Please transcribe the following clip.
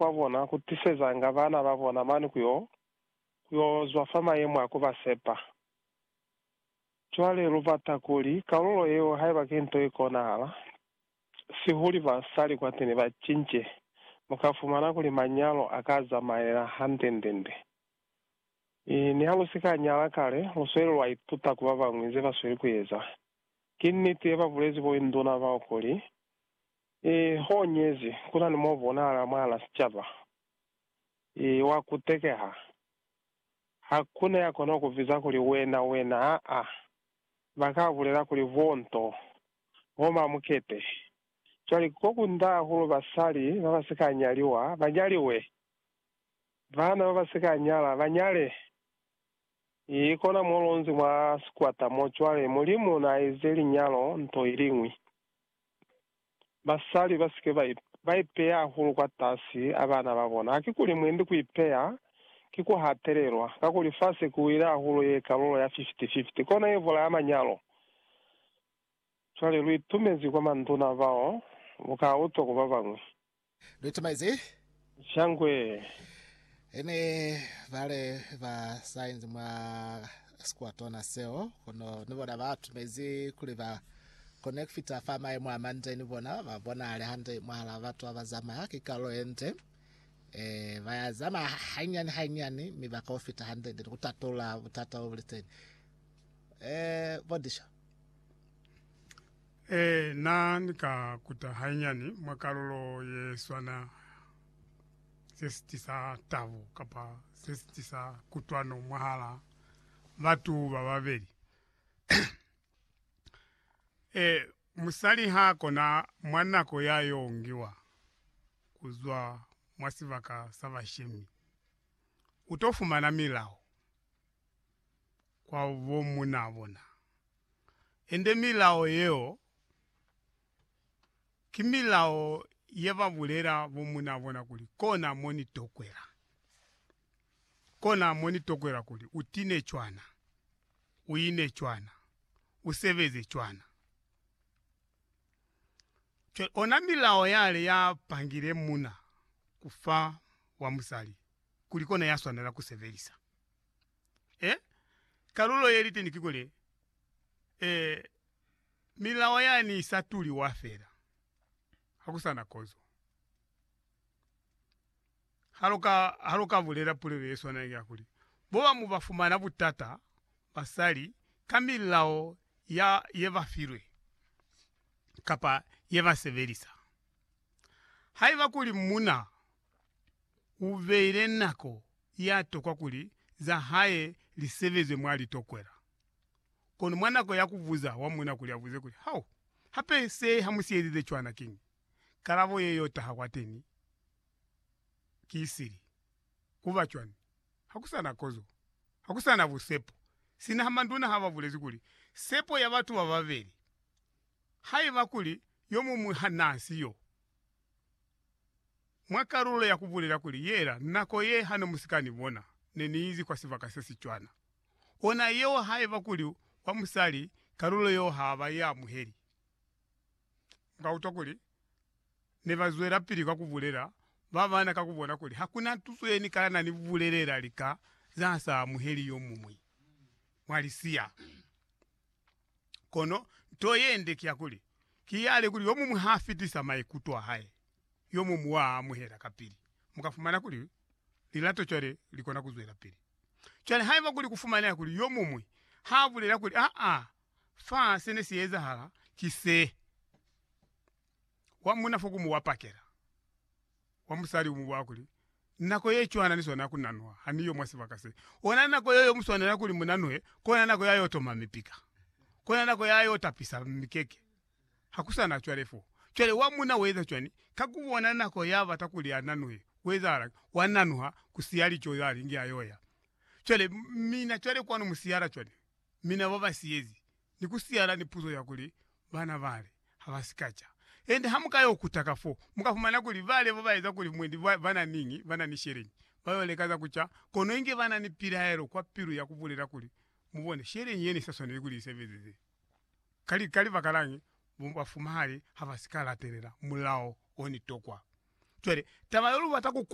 kwa bona ku tisezanga bana ba bona mane ku yo, ku yo zwa fa mayemo a ku ba sepa. Cwale lu bata kuli kalulo yeo, haiba ki nto ye konahala, sihuli ba sa li kwateni ba cince, mu ka fumana kuli manyalo a ka zamaela hande-nde-nde. I, niha lu si ka nyala kale, lu sweli lwa ituta ku ba bañwi ze ba sweli ku eza. Ki niti ye ba bulezi bo induna bao kuli, I hoñezi, ku na ni mo bonahala mwahal'a sicaba, i wa kutekeha. Ha ku na ya kona ku biza kuli, Wena, wena, aa, ba ka bulela kuli, Vo nto, vo mamukete. Cwale, ko ku nda hahulu basali ba ba si ka nyaliwa ba nyaliwe, baana ba ba si ka nyala ba nyale. I kona mo lonzi mwa sikwata mo cwale, Mulimu na ize linyalo nto iliñwi. Basali ba si ke ba ipeya hahulu kwatasi a bana ba bona. Hakikuli mwendi ku ipeya ki ku hatelelwa, kakuli fa se ku wile hahulu ye kalulo ya fifty-fifty. Kono ye bulaya manyalo. Cwale lu itumezi kwa manduna bao lu ka utwa ku ba bañwi. Lu itumaize. Shangwe. E ne bale ba sainzi mwa sikuatona seo, kono ni bona ba tumezi kuli ba kone ku fita fa maimo a mande ni bona ba bonahale hande mwahal'a batu ba ba zamaya. Ki kalulo ye nde. E, ba ya zamaya hanyani hanyani, mi ba ka u fita hande-nde ni ku tatula butata bo bu li teni. E, bo Disho. Ee, na ni ka kuta hainyani mwa kalulo ye swana se si tisa tabo kapa se si tisa kutwano mwahala batu ba babeli. Ee, musali ha kona mwa nako ya yo ngiwa ku zwa mwa sibaka sa bashemi, u to fumana milao kwa bo munaa bona. Ende milao yeo ki milao ye ba bulela bo munaa bona kuli, Kona mo ni tokwela. Kona mo ni tokwela kuli, U tine cwana, u ine cwana, u sebeze cwana. Cwale ona milao yale ya pangile muna ku fa wa musali kuli kona ya swanela ku sebelisa. Eh, kalulo ye liteni kikuli, eh, milao yani isa tuliwa fela. Hakusana kozo. Haluka, haluka bulela pulelo ye swana ya kuli, boba mu ba fumana butata basali ka milao ya ye ba filwe kapa ye ba sebelisa. Haiba kuli muna u beile nako ya tokwa kuli za hae li sebezwe mwa litokwela. Kono mwa nako ya ku buza wa muuna kuli a buze kuli, Hao hape se ha mu sielize cwana kiñi? kalabo ye y'o taha kwateni ki sili. Ku ba cwani? Ha ku sa na kozo. Ha ku sa na busepo. Sina ha manduna ha ba bulezi kuli, Sepo ya batu ba babeli, haiba kuli yo muñwi ha n'a si yo. Mwa kalulo ya ku bulela kuli yela nako ye ha ne mu si ka ni bona, ne ni izi kwa sibaka se si cwana. Ona yeo haiba kuli wa musali, kalulo yeo ha ba i amuheli. Mu ka utwa kuli ne ba zwelapili ka ku bulela ba bana ka ku bona kuli ha ku na tuso ye ni ka na ni bulelela lika za sa amuheli yo muñwi mwa lisiya. Kono nto yende ki ya kuli, ki yale kuli yo muñwi ha fitisa maikuto a hae, yo muñwi wa a amuhela kapili. Mu ka fumana kuli lilato cwale li kona ku zwelapili. Cwale haiba kuli ku fumaneha kuli yo muñwi ha bulela kuli, Aa, fa se ne si ezahala ki se, wa muna fo ku mu wa pakela. wa musali umuba kuli, Nako ye cwana ni swanela ku nanuha, ha ni yo mwa sibaka se. Ona nako yeo yo mu swanela kuli mu nanuhe, ki ona nako ya yo toma mipika. Ki ona nako ya yo tapisa mikeke. Ha ku sa na cwale fo. Cwale wa muna u eza cwani? Ka ku bona nako ya bata kuli a nanuhe, ku ezahala'ngi? Wa nanuha, ku siya lico za lingi a yo ya. Cwale, mina cwale kwanu mu siyala cwani? mi na ba ba siyezi, ni ku siyala ni puzo ya kuli bana bale ha ba si ka ca. Ende ha mu ka yo kuta ka fo, mu ka fumana kuli bale bo ba eza kuli mwendi ba, ba na niñi, ba na ni sheleñi. Ba yo leka za ku ca, kono inge ba na ni pilaelo kwa pilu ya ku bulela kuli, Mu bone, sheleñi ye ne sa swaneli kuli ni sebezeze. Ka, ka libakalañi? Bo bafumahali ha ba si ka latelela mulao o ni tokwa. Cwale, taba yo lu bata ku.